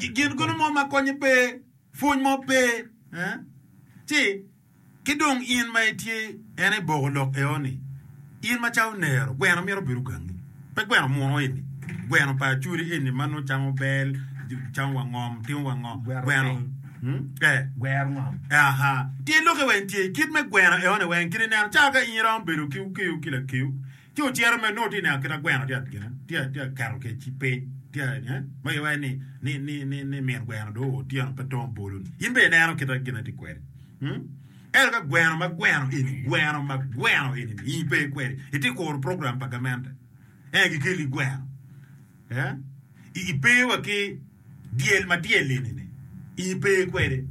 I kin kulu mo ma konye pe, pwony mo pe, ci ki dong in ma itye en aye boko lok eo ni, In ma cawo nero, gweno myero obed ogangi, pe gweno muno eni, gweno pa acholi eni ma nongo camo bel, camo wa ngom, timo wa ngo, gweno, gwero ngom, aha, tye lokke weng tye kit me gweno eo-ni weng, kit ineno cawa ka in iromo bedo ki okeyo ki lakeyo, Ci ocito mere, nongo tye neno kit ma gweno tye ka keto kec-ci piny, ma iye waco ni min gweno dong oo otyeno pe tongo bolo-ni. In bene ineno kit ma gin-ni tye kwede. Ento ka gweno ma gweno eni, gweno ma gweno eni-ni in pe ikwede, itye ka kuro program pa gamente, en gikeli gweno. I i pe wa ki dyel ma dyelli ni ni i i pe kwede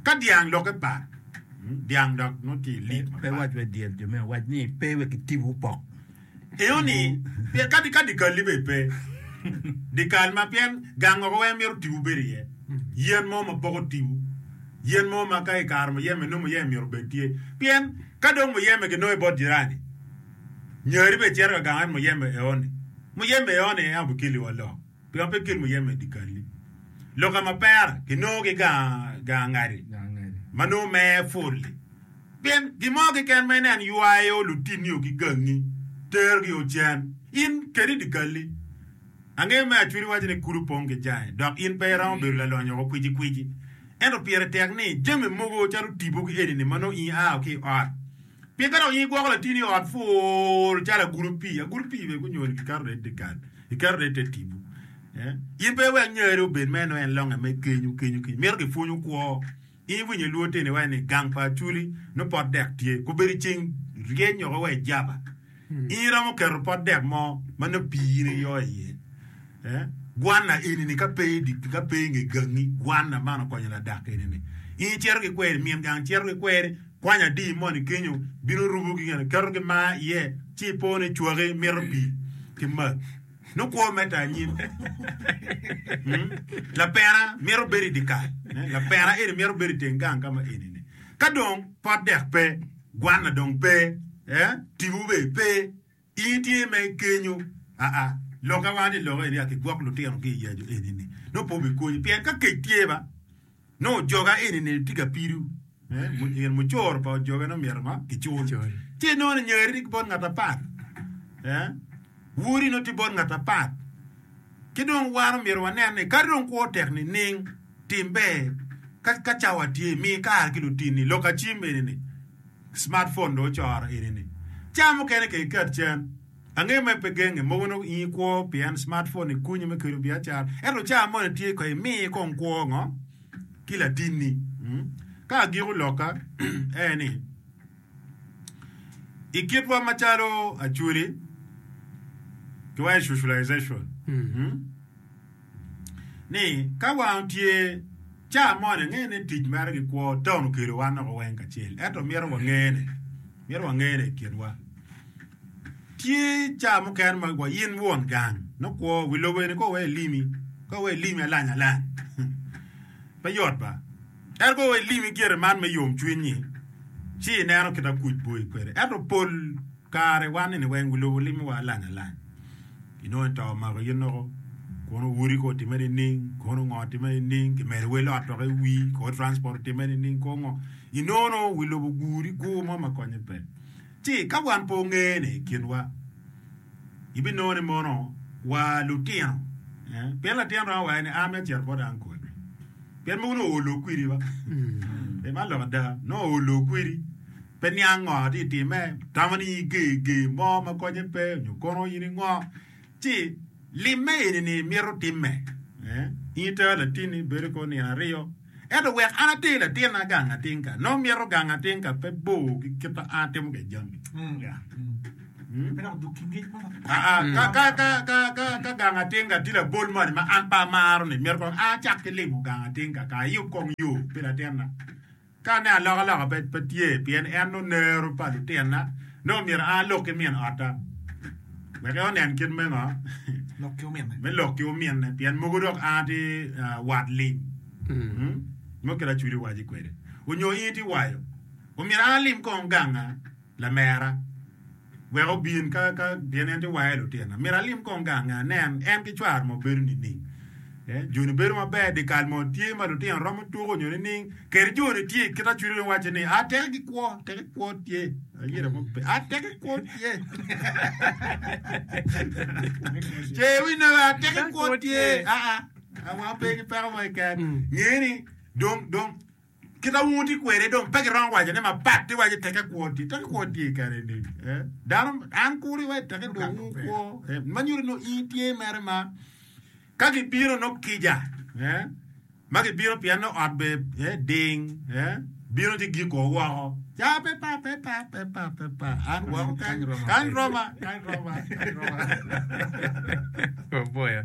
ka dyang lok e par dyang dok nongo tye i lik ma par. Pe wac wai dyel jo me wac ni pe wek ki tibu opok. Eyo ni pien kadi ka dikal ni bene pe dikal ma pien gang oko weng mito tibu bedo iye yen mo ma poko tibu yen mo ma ka ikaro muyeme nongo muyeme myero obed tye pien ka dong muyeme ki nongo i bot jirani. Nyari bene cito ka gang en muyeme eoni, Muyeme eoni en obikiliwa lok, pien pe kil muyeme i dikali. Loka ma pera kinongo ki gang ngadi ma nongo mere pul-li, pien gin mo keken ma ineno ywayo lutinio ki gangi, terogi o cen, in keni dikali. Angeyo me acwili waco ni kudi opong ki jai, dok in pe iromo bedo lalonyo woko kwicikwici. Ento pire tek ni jami mogo calo tipo ki eni-ni ma nongo in aa ki i ot, Pien kare onyo igwoko latini i ot pur calo agulu pii, agulu pii bene gunyoyo ni kiketo ne i te gal, kiketo ne i te tibu. Eh? In pe iwek ngeri obed ma eno en longe me kenyu, kenyu, kenyu. Mito gipwonyu kwo. In iwinyo lwod teni iwaco ni gang pa Aculi nongo pot dek tye. Kobedo i ceng ryeny nyo wa i Java. In iromo keto pot dek mo ma nongo pii in iyo iye. Eh? Gwanna eni-ni ka pe idi, ka pe inge gangi, gwanna man okonyo ladak eni-ni. In icito ki kweri, min gang cito ki kweri, Kwany adi moni kenyo bino rubo ki gin iketo ki mar iye ci ipo ni cwaki mito pii ki mac. Nongo kwo mete anyim. Lapena mito bedo i dikal. Lapena eni mito bedo i teng gang ka ma eni ni. Ka dong pot dek pe, gwanna dong pe, tipo bene pe. In itye ma igenyo? Aa, lok awa ni lok eni ati gwok lutino ki iya jo eni ni nongo pe obikonyi pien ka kec tye ba nongo ojoga eni ni tye ka pidu eh in mucoro pa ojoga nongo myero ma kicul ci nongo ni nyari ni bot ngat apat eh wodi nongo tye bot ngat apat ki dong wan omyero wanen ni kadi dong kwo tek nining Tim ber, Ka ka cawa tye, mi kare ki lutinni. Lok acim eni-ni, Smartphone dong ocoro eni-ni. Cawa mukene kek iket cen. Angeyo mere pe genge, mogo nongo in ikwo pien smartphone-ni konyi me kelo biacara. Ento cawa moni tye kong imi kong kwo ngo ki latinni? Ka agiko lokka en ni, i kitwa macalo Acholi, kiwaco i socialization. ni ka wang otye ca moni angeyo ni tic mere ki kwo taun okelo wan loko weng kacel ento mito wangene mito wangene i kinwa tye ca mukene ma wa in won gang nongo kwo wi lobo eni kong wek ilimi kong wek ilimi alany alany pe yot ba. Ento ka ilim i gire man me yomcwiny-nyi, ci ineno kit ma kuc boyi kwede. Ento pol kare wan-ni weng wilobo limowa alany alany. Inongo i to omako in loko, kono odi kong otimme nining, kono ngo otimme nining, kimedo wel ot loko i wi, kono transport otimme nining, kono ngo. Inongo nongo wi lobo oguri gur mo ma konye pe. Ci ka wan pe wange ni i kinwa, ibinongo ni mono wa lutino. Pien latin romo waci ni, An myero acit bot ankol. Pien mogo nongo olo kwiri wa. Pe man lok ada. Nongo olo kwiri. Pe niang ngo ti itime. Tamo ni ige ige mo ma konye pe nyo kono in ingo. Ci limme eni ni mito timme. Eh, in ita latini bedo ko nino aryo. Ento wek an atir latina gang atinka. Nongo mito gang atinka pe bor ki kit ma an atimo kwede jami. Ka gang atinga tye labol moni ma an pe amaro-ni, myero kong acak ki limo gang atinga kong ayub kong yo pi latinna. Ka aneno alokaloka pe tye pien en nongo nero pa lutinna, nongo myero an alok ki min otta wek onen kit me ngo? me lok ki ominne pien mogo dok an atye wat lim nongo kit acwilo wacci kwede onyo in itye waco, omyero an alim kong ganga. Lamera, wek obin ka, ka, pien en tye wange lutina. Myero alim kong gange anen en ki cware ma obedo nining. Ee, Joni bedo maber dyekal mo tye ma lutino romo tuko nyo nining? Kadi Joni tye, kit Acwiri dong wacce ni, a, teke ki kwo, teke ki kwo tye. Ayira mo pe, a, teke ki kwo tye. Ce iwinne be, a, teke ki kwo tye. A, a, a, wango pe ki peko mo keken. Ngeni, dong, dong, Kita wun wutye kwede dong pe giromo waco ne mapat ni waco teke kwo tye. Teke kwo tye kare ni. Eh? Dano, an kuri wa teke dong wun kwo. Eh? Ma nyuto no i tye mere ma ka gibino no kija. Eh? Ma gibino pien no ot be eh, ding. Eh? Bino ci giko woko. Ca pe pa, pe pa, pe pa, pe pa. An woko kany, kany roma, kany roma, kany roma. Oboyo.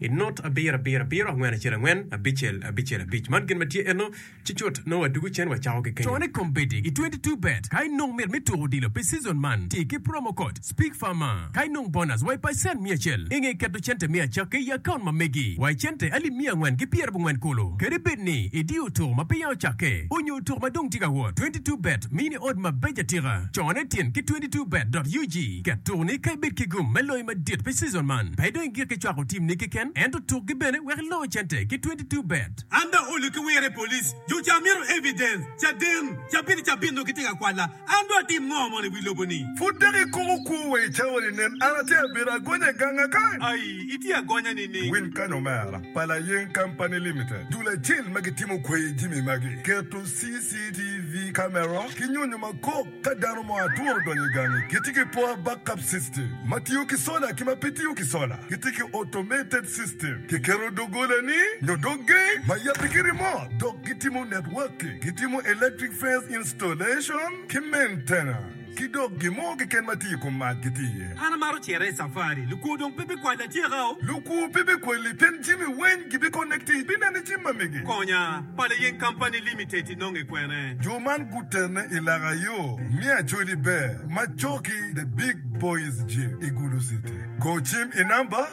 I not abiro abiro abiro angwen acel angwen abicel abicel abic man gin ma tye eno ci cut nongo wa dugu cen wa cako ki kenyo. Cone kombeddi i 22 bet ka i nong mit me tuko odilo pi season man ti ki promo code SPEAKFARMER ka i nong bonus wa i pacent miya acel i nge keto cente me acakki i account ma megi wa i cente alip miya angwen ki pyera bongwen kulu kadi bed ni i diyo otuko ma peya ocakke onyo otuko ma dong tye ka wot 22 bet mini odd ma beco atika cone tin ki 22 bet dot ug ket tuko ni ka i bed ki gum me loyo madit pi season man pe Gik icwako timni keken ento tukgi bene wek iloo cente ki twenty two bet. An dong olu ki wire police jo ca mito evidence caden cabit cabit nongo gitye ka kwala an dong atim ngo mono iwi lobo ni. Pud dok ikomo kwo wa i cawa ni nen an atye abedo agonya ganga kany. Ayi itye agonya nining. Win kany omera, pa Layeng Company Limited, dul acel ma gitimo kwai jimi magi, keto CCTV camera ki nyonyo makok. Ka dano mo atwo odonyo i gangi, kitye ki poor backup system ma tiyo ki sola ki ma pe tiyo ki sola. Kitye ki automated system, kiketo doggolani nyo dog gate ma yabbe ki remote dok gitimo networking, gitimo electric fence installation ki maintenance, ki dok gin mo keken ma tye i kom mac gitye iye. An amaro cito i safari. Lukwo dong pe bikwala atyeka-o. Lukwo pe bikwali pien jami weny gibikonekti ibineno i jami ma mege. Konya, Pala Yen Company Limited. inonge kwene? Jo man gutenne i laka yo me Acholi Ber ma coki The Big Boys Gym i Gulu City. Go cim i namba,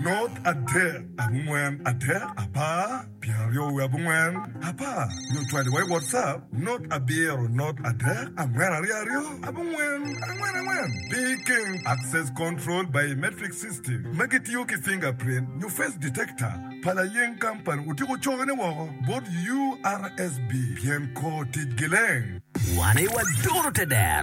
not adek abongwen adek apar pyeraryo wiye abongwen apar nyo cwali wa i WhatsApp, not abiro not adek angwen aryo aryo abongwen angwen angwen. Picking, Access Control Biometric System ma gitiyo ki fingerprint nyo face detector. pa layeng kampani otyeko cokone woko bot URSB pien kor ticgi leng. Wan aye waduro te dero.